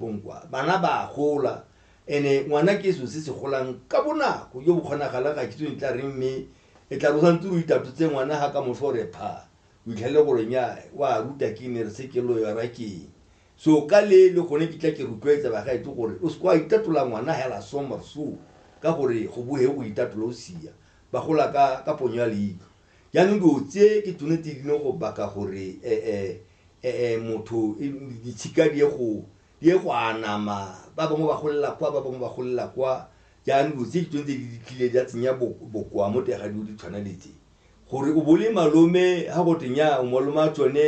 Bonkwa, bana ba a gola, ene ngwana ke selo se se golang ka bonako jo bo kgonagalang, ga ke itse o ne tla reng, mme e tla re o santse o itatotse ngwana ga ka moso o re pha, o itlhelele gore nnyaa, o a ruta ke ne re se ke loyora keng. So ka le le gone ke tla ke rotloetsa bagaetsho gore o se ke wa itatola ngwana hela so mor so, ka gore go bohe o itatola o sia. Ba gola ka ka ponyo ya leitlho. Jaanong dilo tse ke tsone tse di leng go baka gore motho ditshika di ye go anama, ba bangwe ba golela kwa, ba bangwe ba golela kwa. Jaanong dilo tse ke tsone tse di tlileng di a tsenya bokoa mo teng ga dilo di tshwana le tse. Gore o bo o le malome, ga go twe nnyaa o malome wa tsone,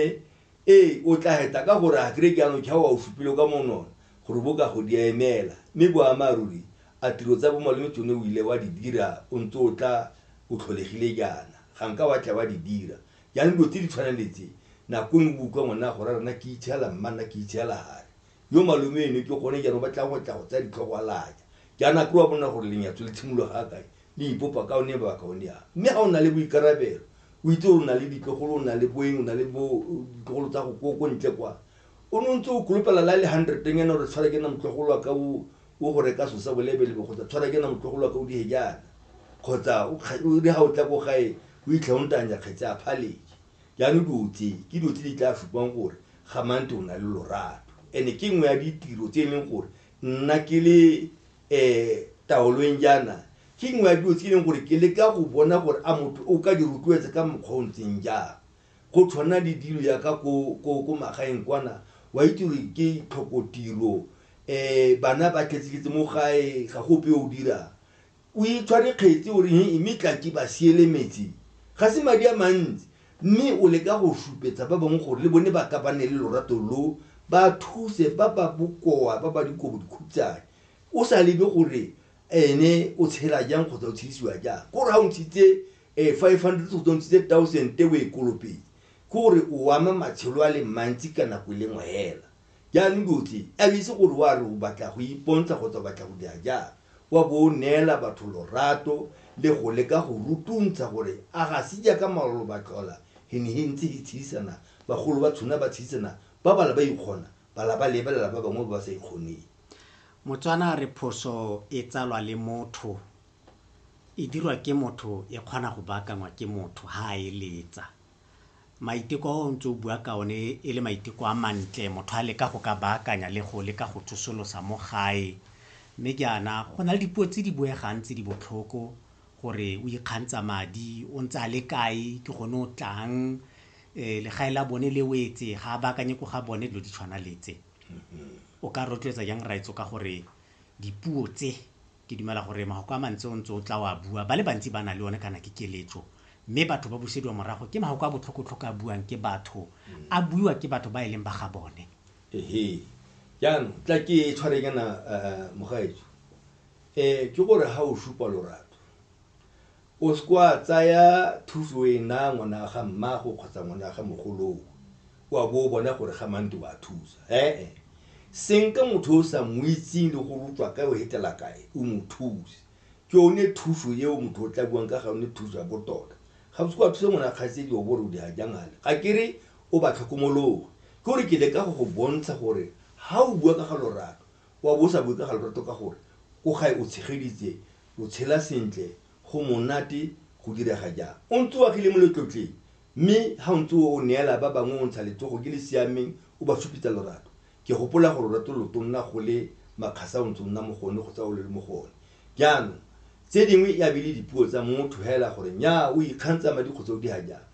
Ee, o tla heta ka gore a kere jaanong tšhao a o supile ka monona gore bo ka go di emela, mme boammaaruri a tiro tsa bomalome tsone o ile wa di dira o ntse o tla o tlholegile jaana, ga nka wa tla wa di dira. Jaanong dilo tse di tshwanang le tse, nako nngwe bo utlwa ngwana a go raya nna ke itshela mma, nna ke itshela hare. Yo malome eno ke gone jaanong ba tlang go tla go tsaya ditlhogo a laja. Jaanong a kere wa bona gore lenyatso le tshimologa ga kae, le ipopa ka one mabaka one a. Mme ga o na le boikarabelo, o itse gore o na le ditlogolo, o na le boeng, o na le bo ditlogolo tsa go ko ko ntle kwa. O ne o ntse o kolopela la le hundred nyana gore tshwara ke nna motlogolo wa ka o o go reka selo sa bolebelebe kgotsa tshwara ke nna motlogolo wa ka o dihe jaana kgotsa o kga- o re ga o tla ko gae o itlha o ntanya kgetse a phaleke. Jaanong dilo tse ke dilo tse di tla supang gore ga mante o na le lorato and-e ke nngwe ya ditiro tse e leng gore nna ke le um taolong jaana ke nngwe ya dilo tse e leng gore ke leka go bona gore a motho o ka di rotloetsa ka mokgwa o ntseng jang go tshwana le dilo yaka ko magaeng kwana wa itse gore ke tlhokotiro um eh, bana ba tlhetseketse mo gae ga go ope o dirang o itshware kgetse o re mme tlaki ba siele metsi ga se madi a mantsi Mme o leka go šupetsa ba bangwe gore le bone ba ka ba ne le lorato lo, ba thuse ba ba bokoa, ba ba dikobo dikhutshane, o sa lebe gore ene o tshela jang kgotsa o tshedisiwa jang. Ke gore ga o ntshitse 500 kgotsa o ntshitse 1000 o e kolopetse, ke gore o ama matshelo a le mantsi ka nako e le nngwe hela. Jaanong diotleng, a o itse gore o a re o batla go ipontsha kgotsa o batla go dira jang, wa bo o neela batho lorato le go leka go rutuntsha gore a ga se jaaka maolo ba tlhola he ne he ntse he tshedisana, bagolo ba tshuna ba tshedisana, ba bala ba ikgona, bala ba lebelela ba bangwe ba ba sa ikgoneng. Motswana a re phoso e tsalwa le motho, e dirwa ke motho, e kgona go baakangwa ke motho ha a eletsa. maiteko a o ntse o bua ka one e le maiteko a mantle motho a leka go ka baakanya le go leka go tsosolosa mo gae mme jaana go na le dipuo tse di buegang tse di botlhoko gore o ikgantsha madi o ntse a le kae ke gone o tlang um legae la bone le o etse ga a baakanye ko ga bone dilo di tshwana letse o ka rotloetsa jang raitso ka gore dipuo tse Ke dumela gore mafoko a mantsi o ntse o tla o a bua, ba le bantsi ba na le one kana ke keletso. Mme batho ba busediwa morago ke mafoko a botlhokotlhoko a buang ke batho, a buiwa ke batho ba e leng ba ga bone. Ehe. Jaanong tla ke tshware kana mogaetsho. Ke gore ha o supa lorato, O seke wa tsaya thuso e na ngwana ga mmago kgotsa ngwana ga mogoloo o a bo o bona gore ga mante wa thusa. He-e. Senka motho o sa mo itseng le gore o tswa kae o hetela kae, o mo thuse. Ke yone thuso eo motho o tla buang ka ga yone thuso ya botota. Ga o seke wa thusa ngwana kgaitsedi o bo o re o dira jang ale. Ga ke re o ba tlhokomologe. Ke gore ke leka go go bontsha gore ha o bua ka ga lorato, o a bo o sa bue ka ga lorato ka gore ko gae o tshegeditse O tshela sentle, go monate go direga jang? O ntse o agile mo letlotleng, mme ha o ntse o neela ba bangwe o ntsha letsogo ke le siameng o ba supetsa lorato. Ke gopola gore lorato lo to nna go le makgasa o ntse o nna mo go one kgotsa o le mo go one. Jaanong, tse dingwe e a be e le dipuo tsa motho hela gore nnyaa o ikgantsha madi kgotsa o diha jang.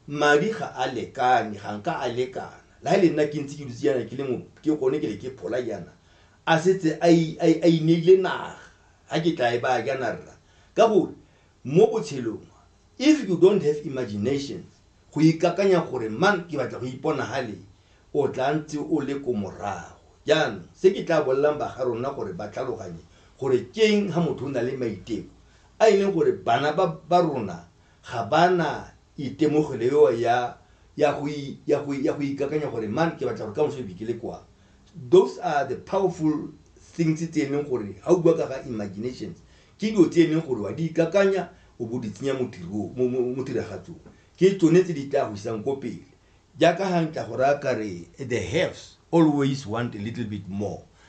Madi ga a lekane, ga nka a lekana. La he le nna ke ntse ke dutse jaana ke le mo ke gone ke le ke phola jaana, a setse a, a, a ineile naga, ga ke tla e baya ke ana rra ka gore mo botshelong if you don't have imaginations go ikakanya gore mang ke batla go ipona ha le o tla ntse o le ko morago jaanong se ke tla bolelang ba ga rona gore ba tlhaloganye gore keng ha motho o na le maiteko a e leng gore bana ba ba rona ga ba na itemogelo eo ya ya go i- ya go i- ya go ikakanya gore man ke batla gore ka moso ke le kwang Those are the powerful things tse e leng gore ga o bua ka ga imaginations ke dilo tse e leng gore wa di ikakanya o bo di tsenya mo tiragatsong ke tsone tse di tla go isang ko pele jaaka ga ntla go raya kare the haves always want a little bit more